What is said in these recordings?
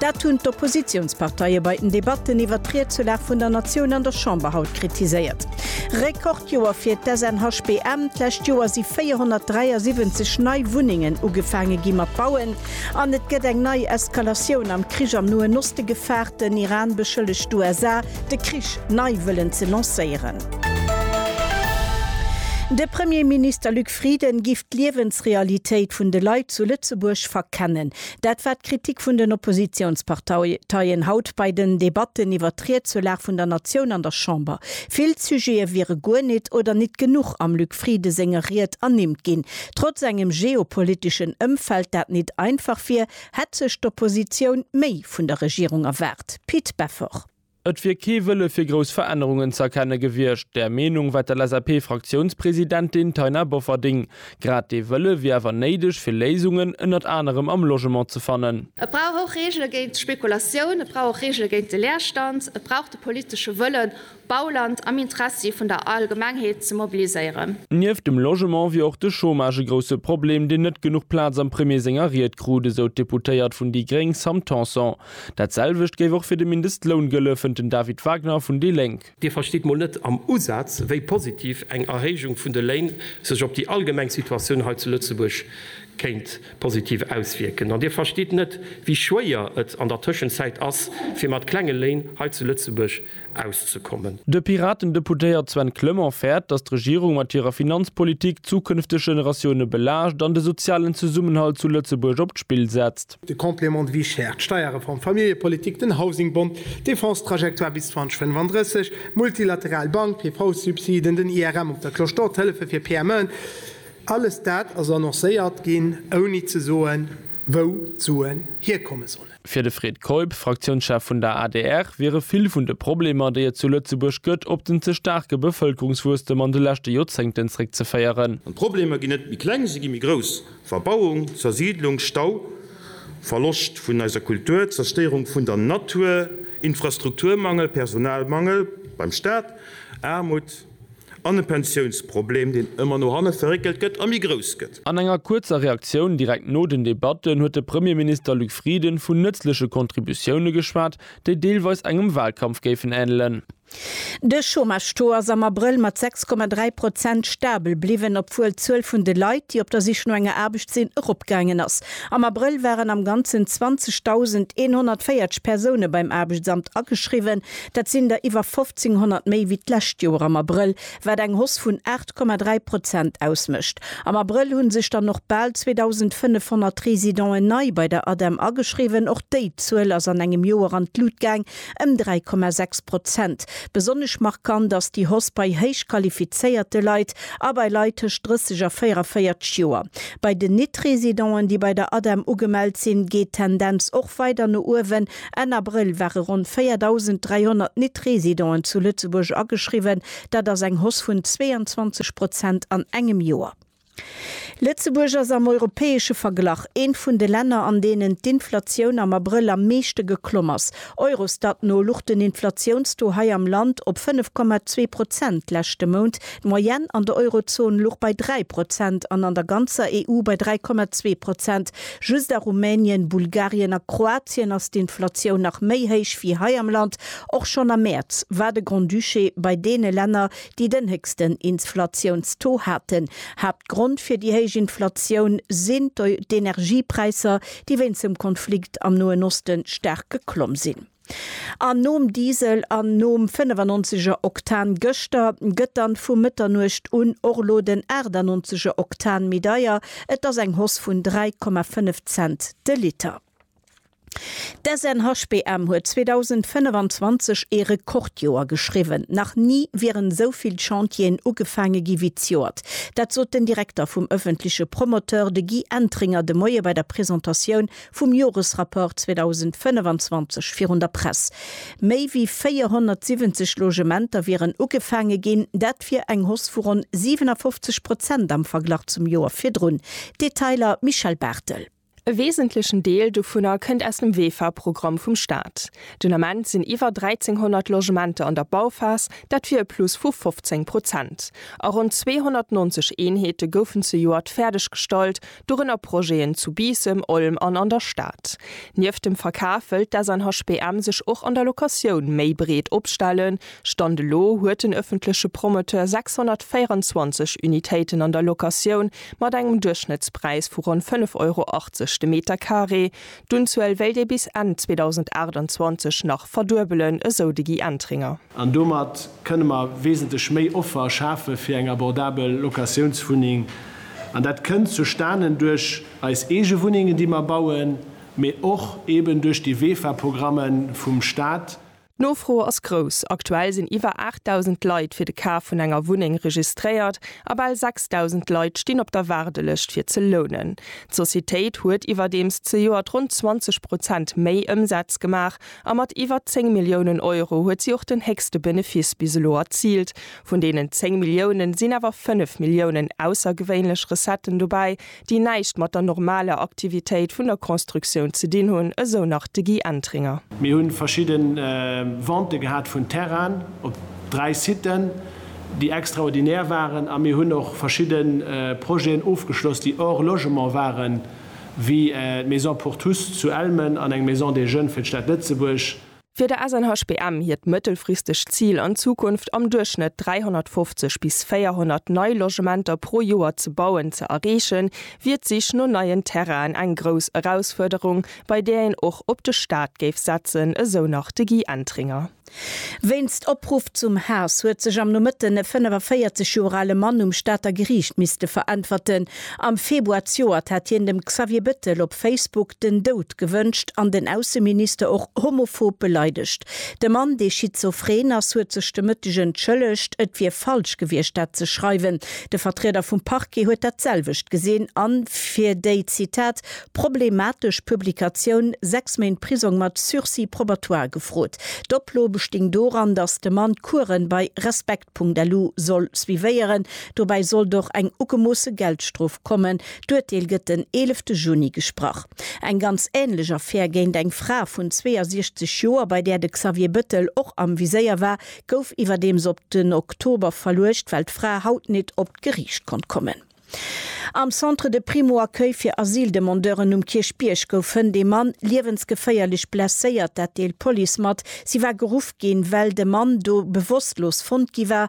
Dat hunn d'Oppositiounsparteie bei den Debatten iwwert d'Riedselaf vun der Natioun an der Chamber haut kritiséiert. Rekordjoer fir d'SNHBM, D'lescht Joer si 473 nei Wunnengen ugefaange gi mat bauen an et gëtt eng nei Eskalatioun am Krich am Noen Oste gefaart. Den Iran beschëllegt d'USA, de Krich nei wëllen ze lancéieren. De Premierminister Luc Frieden giff d'Liewensrealitéit vun de Leit zu Lëtzebuerg verkennen. Dat war d'Kritik vun den Oppositionsparteien haut bei den Debatten iwwert d'Riedsulag vun der Natioun an der Chamber. Vill Sujete wiere guer nit oder nit genuch am Luc Frieden senger Ried ernimmt ginn. Trotz engem geopoliteschen Ëmfeld, dat nit einfach wier, hätt sech d'Oppositioun méi vun der Regierung erwaart. Pit Beffort. Et wier kee Wëlle fir grouss Verännerungen ze erkenne gewiescht. Där Meenung war d'LSAP-Fraktiounspresidentin Taina Bofferding. Grad dee Wëlle wier awer néideg, fir Léisungen ënnert anerem am Logement ze fannen. Et brauch och Reegele géint d'Spekulatioun, et brauch och Reegele géint de Leerstand, et brauch de politesche Wëllen, Bauland am Interessi vun der Allgemengheet ze mobiliséieren. Nieft dem Logement wier och de Chômage e grousse Problem, deen net genuch Plaz am Premier senger Ried krut, esou d'Deputéiert vun déi gréng Sam Tanson. Dat selwecht géif och fir de Mindestloun gëlle, fënnt den David Wagner vun déi Lénk. Dir verstitt mol net am Usaz, wéi positiv eng Erhéijung vun de Léin sech op déi allgemeng Situatioun hei zu Lëtzebuerg kéint positiv auswierken. An Dir verstitt net, wéi schwéier et an der Tëschenzäit ass, fir mat klenge Léin hei zu Lëtzebuerg auszekommen. De Piraten-Deputéiert Sven Clement fäert, datt d'Regierung mat hirer Finanzpolitik d'zukünfteg Generatioune belaascht an de sozialen Zesummenhalt zu Lëtzebuerg op d'Spill setzt. De Complément de vie chère, d'Steierreform, d'Familljepolitik, den Housingbond, d'Defense-Trajectoire bis 2035, d'multilateral Bank, d'PV-Subsiden, den IRM op der Cloche d'Or, d'Hëllefe fir PMEen, alles dat ass annoncéiert ginn, ouni ze soen, wou d'Suen hierkomme sollen. Fir de Fred Keup, Fraktiounschef vun der adr, wiere vill vun de Problemer, déi et zu Lëtzebuerg gëtt, op den ze staarke Bevëlkerungswuesstem an de leschte Joerzéngten zréckzeféieren. An d'Problemer ginn net méi kleng, se gi méi grouss, Verbauung, Zersiidlung, Stau, Verloscht vun eiser Kultur, Zerstéierung vun der Natur, Infrastrukturmangel, Personalmangel beim Staat, Aarmut, An e Pensiounsproblem, deen ëmmer no hanne verréckelt gëtt a méi grouss gëtt. An enger kuerzer Reaktioun direkt no den Debatten huet de Premierminister Luc Frieden vun nëtzleche Contributioune geschwat, déi deelweis engem Walkampf géifen änelen. De Chômage-Taux ass am Abrëll mat 6,3 Prozent stabel bliwwen, obwuel d'Zuel vun de Leit, déi op der Sich no enger Aarbecht sinn, eropgaangen ass. Am Abrëll waren am Ganzen 20.140 Persoune beim Aarbechtsamt ageschriwwen. Dat sinn der iwwer 1.500 méi wéi d'lescht Joer am Abrëll, wat eng Hoss vun 8,3 Prozent ausmécht. Am Abrëll hu sech dann och bal 2.500 Residenten nei bei der ADEM ageschriwwen. Och déi Zuel ass an engem Joer an d'Lut gaang, ëm 3,6 Prozent. Besonnesch markant ass déi Hoss bei héich qualifizéierte Leit a bei Leit tëscht 30 a 44 Joer. Bei den Nit-Residenten, déi bei der ADEM ugemellt sinn, geet d'Tendenz och weider no uewen, Enn Abrëll ware ronn 4.300 Nit-Residenten zu Lëtzebuerg ageschriwwen, dat ass eng Hoss vun 22 Prozent an engem Joer. Lëtzebuerg ass am europäesche Verglach eent vun de Länner, an deenen d'Inflatioun am Abrëll am meeschte geklomm ass. Eurostat no luch den Inflatiounstaux hei am Land op 5,2 Prozent leschte Mount. D'Moyenne an der Eurozon luch bei 3 Prozent an an der ganzer EU bei 3,2 Prozent. Just a Rumänien, Bulgarien a Kroatien ass d'Inflatioun nach méi héich wéi hei am Land. Och schonn am Mäerz war de Grand-Duché bei deene Länner, déi den héchsten Insflatiounstaux haten. Haaptgrond fir déi héich Inflatioun sinn d'Energiepräisser, déi wéinst dem Konflikt am Noen Osten staark geklomm sinn. An nom Diesel an nom 95 er Oktan gëschter gëtt dann vu Mëtternuecht un och elo den 98 er Oktan méi deier. Et ass eng Hausse vun 3,5 Cent de Liter. D'SNHBM huet 2025 ee Rekordjoer geschriwwen. Nach ni wieren esou vill Chantieren ugefaange gi wéi d'Joert. Dat sot den Direkter vum ëffentleche Promoteur, de Guy Entringer, de Moie bei der Presentatioun vum Joresrapport 2025 virun der Press. Méi wéi 470 Logementer wieren ugefaange ginn, dat wier eng Hausse vu ronn 57 Prozent am Verglach zum Joer virdrun. Detailer, Michèle Barthel. E wesentlechen Deel dovunner kënnt aus dem WEFA-Programm vum Staat. Den Ament sinn iwwer 1.300 Logementer an der Bauphas, dat wier e Plus vu 15 Prozent. A ronn 290 Eenheete goufen zejoert fäerdeggestallt, dorënner Projeten zu Biissem, Olm an an der Stad. Nieft dem Verkaf wëllt d'SNHBM sech och an der Locatioun méi breet opstellen. Stand elo huet den ëffentleche Promoteur 624 Unitéiten an der Locatioun mat engem Duerchschnëttspräis vu ronn 5,80 Euro de Meterkaree. D'Unzuel wéilt ee bis Enn 2028 nach verduebelen, esou de Guy Entringer. An domat kënne mer wesentlech méi Offer schafe fir eng abordabel Locatiounswunneng. An dat kënnt zustanen duerch eis eege Wunnengen, déi mer bauen, mee och eeben duerch déi WEFA-Programme vum Staat. D'Nofro ass grouss, aktuell sinn iwwer 8.000 Leit fir de Kaf vun enger Wunneng registréiert a bal 6.000 Leit stinn op der Waardelëscht fir ze lounen. D'Societéit huet iwwerdeems zejoert ronn 20 Prozent méi Ëmsaz gemaach a mat iwwer 10 Milliounen Euro huet si och den héchste Benefiss bis elo erziilt. Vun deenen 10 Milliounen sinn awer 5 Milliounen aussergewéinlech Recetten dobäi, déi näischt mat der normaler Aktivitéit vun der Constructioun ze dinn hunn, esou nach de Guy Entringer. Mir hu verschidde Ventë gehat vun Terrainen op dräi Siten, déi extraordinär waren a mir hunn och verschidde Projeten ofgeschloss, déi hors logement waren, wéi d'Maison pour tous zu Elmen an eng Maison des jeunes fir d'Stad Lëtzebuerg. Fir de SNHBM hiert mëttelfristegt Zil an Zukunft am Duerchschnëtt 350 bis 400 nei Logementer pro Joer ze bauen ze erreechen, wier d'Sich no neien Terrainen eng grouss Erausfuerderung, bei där een och op de Staat géif setzen, esou nach de Guy Entringer. Wéinst Opruff zum Haass huet sech am Nomëtten e 45 Joer ale Mann um Stater Geriicht misste veräntwerten. Am Februar zejoert hat hien dem Xavier Bettel op Facebook den Doud gewënscht an den Ausseminister och homophob beleidegt. De Mann, dee schizophren ass, huet sech de Mëtteg entschëllegt. Et wier falsch gewiescht, dat ze schreiwen. De Vertrieder vum Parquet huet dat selwecht gesinn a fir déi, Zitat, problematesch Publikatioun sechs Méint Prisong mat Sursis probatoire gefrot. D'Oplo besting doran, datt de Mann d'Kuere bei respekt.lu soll suivéieren, Dobäi sollt och eng ugemoosse Geldstrof kommen. D'Urteel gëtt den eelefte Juni gesprach. Eng ganz änlech Affär géint eng Fra vun 62 Joer, bei där de Xavier Bëttel och am Viséier war, gouf iwwerdeems op den Oktober verluecht, well d'Fra haut nit op d'Geriicht konnt kommen. Am Centre de Primo-Accueil fir Asyldemandeuren um Kierchbierg gouf Hënt ee Mann liewensgeféierlech blesséiert, dat deelt d'Police mat. Si war geruff ginn, well de Mann do bewosstlos fonnt gi war.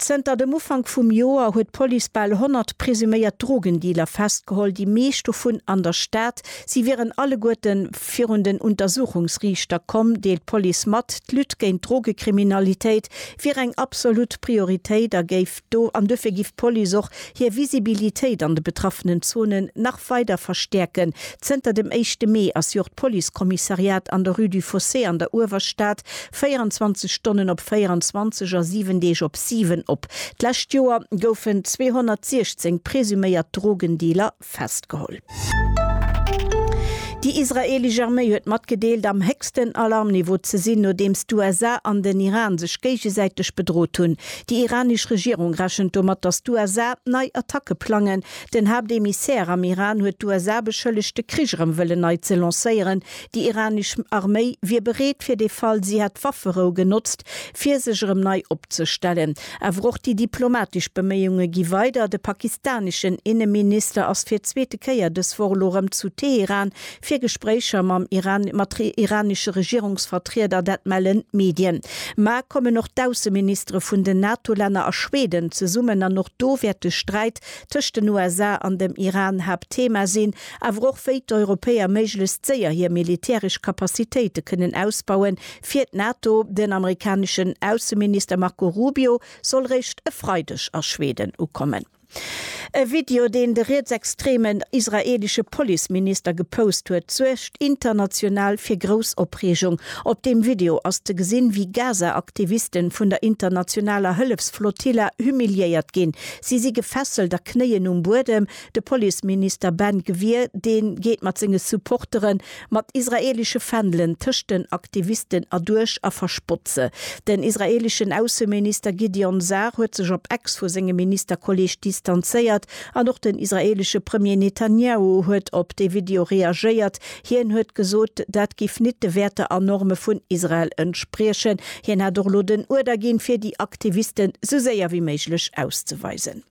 Zënter dem Ufank vum Joer huet d'Police bal 100 presuméiert Drogendealer festgeholl, déi meescht dovun an der Stad. Si wieren alleguerte virun den Untersuchungsriichter komm, deelt d'Police mat. D'Lutte géint d'Drogekriminalitéit wier eng absolut Prioritéit a géif do an dofir giff d'Police och hir Visibilitéit an de betraffenen Zonen nach weider verstäerken. Zënter dem éischte Mee ass jo och d'Policekommissariat an der Rue du Fossé an der Uewerstad 24 Stonnen op 24 a 7 Deeg op 7 op. D'lescht Joer goufen 216 presuméiert Drogendealer festgeholl. Déi israeelesch Arméi huet matgedeelt, am héchsten Alarmniveau ze sinn, nodeems d'USA an den Iran sech géigesäiteg bedrot hunn. Déi iranesch Regierung rechent domat, datt d'USA nei Attacke plangen. Den Haaptemissaire am Iran huet d'USA beschëllegt, de Krich erëm wëllen nei ze lancéieren, Déi iranesch Arméi wier bereet fir de Fall si hätt d'Wafferou genotzt, fir sech erëm nei opzestellen. Awer och déi diplomatesch Beméiunge gi weider. De pakistaneschen Inneminister ass fir d'zweete Kéier dës Woch elo erëm zu Teheran fir Gespréicher mam mat iranesche Regierungsvertrieder, dat mellen d'Medien. Ma kommen och d'Ausseministere vun den NATO-Länner a Schweden zesummen an och do wäert de Sträit tëscht den USA an dem Iran Haaptthema sinn. awer och wéi d'Europäer méiglechst séier hir militäresch Kapazitéite kënnen ausbauen, fir d'NATO. Den amerikaneschen Ausseminister Marco Rubio soll réischt e Freideg a Schweden ukommen. E Video, deen de rietsextremen israeelesche Policeminister gepost huet, suergt international fir grouss Opreegung. Op deem Video ass ze gesinn, wéi Gaza-Aktivisten vun der internationaler Hëllefsflotilla humiliéiert ginn. Si si gefesselt a knéien um Buedem. De Policeminister Ben Gvir, dee geet mat senge Supportere mat israeelesche Fändelen tëscht den Aktivisten erduerch a verspott se. Den israeeleschen Ausseminister Gideon Sa'ar huet sech op Ex vu sengem Ministerkolleeg distanzéiert an och den israeelesche Premier Netanjahu huet op dee Video reagéiert. Hien huet gesot, dat giff nit de Wäerter a Norme vun Israel entspriechen. Hien hätt och elo den Uerder ginn, fir déi Aktivisten esou séier wéi méiglech auszeweisen.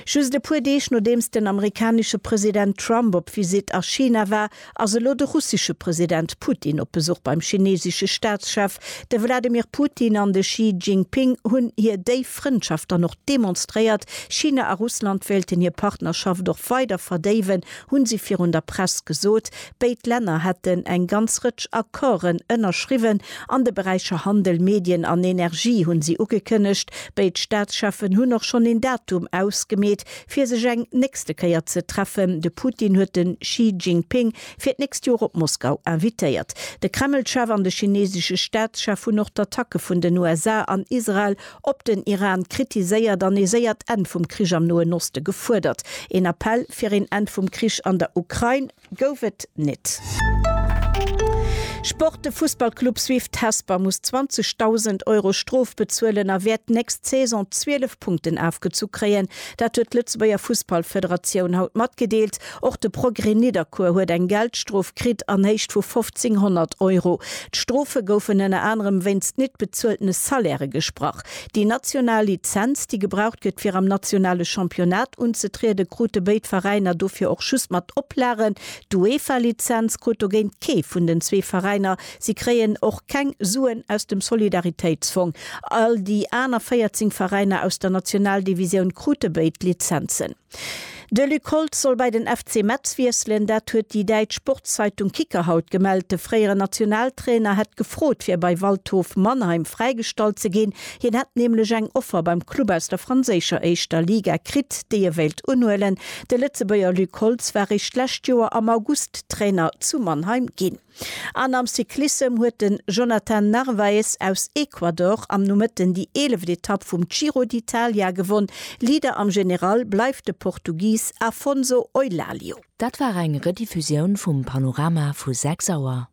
Just e puer Deeg nodeems den amerikanesche President Trump op Visitt a China war, ass elo de russesche President Putin op Besuch beim chinesesche Staatschef. De Wladimir Putin an de Xi Jinping hunn hir déif Frëndschaft dann och demonstréiert. China a Russland wéilten hir Partnerschaft och weider verdéiwen, hu si virun der Press gesot. Béid Länner hätten eng ganz Rëtsch Accorden ënnerschriwwen an de Beräicher Handel, Medien an Energie, hunn si ugekënnegt. Béid Staatscheffen hunn och schonn een Datum ausgemeet, fir sech eng nächste Kéier ze treffen. De Putin huet de Xi Jinping fir d'nächst Joer op Moskau invitéiert. De Kremlchef an de chinesesche Staatschef hunn och d'Attacke vun den USA an Israel op den Iran kritiséiert an ee séiert Enn vum Krich am Noen Oste gefuerdert. Een Appell fir een Enn vum Krich an der Ukrain. Gouf et nit. Sport, De Fussballclub Swift Hesper muss 20.000 Euro Strof bezuelen a wäert d'nächst Saison 12 Punkten afgezu kréien. Dat huet d'Lëtzebuerger Fussballfederatioun haut matgedeelt. Och de Progrès Nidderkuer huet eng Geldstrof kritt an Héicht vu 1.500 Euro. D'Strofe goufen ënner anerem wéinst nit bezueltene Salairë gesprach. Déi national Lizenz, déi gebraucht gëtt fir am nationale Championnat unzetrieden, krute béid Veräiner dofir och just mat Oplagen. D'UEFA-Lizenz krut dogéint kee vun den zwee Veräiner. Si kréien och keng Suen aus dem Solidaritéitsfong. All déi aner 14 Veräiner aus der Nationaldivisioun krute béid Lizenzen. De Luc Holtz soll bei den FC Metz wiesselen. Dat huet déi däitsch Sportszeitung Kicker haut gemellt. De fréiere Nationaltrainer hätt gefrot, fir bei Waldhof Mannheim fräigestallt ze ginn. Hien hätt nämlech eng Offer beim Club aus der franséischer éischter Liga kritt, déi e wéilt unhuelen. De Lëtzebuerger Luc Holtz war eréischt d'lescht Joer am August Trainer zu Mannheim ginn. An am Cyclissem huet den Jonathan Narvaez aus Ecuador am Nomëtten déi eeleft Etapp vum Giro d'Italia gewonn. Leader am General bleift de Portugis Afonso Eulalie. Dat war eng Rediffusioun vum Panorama vu 6 Auer.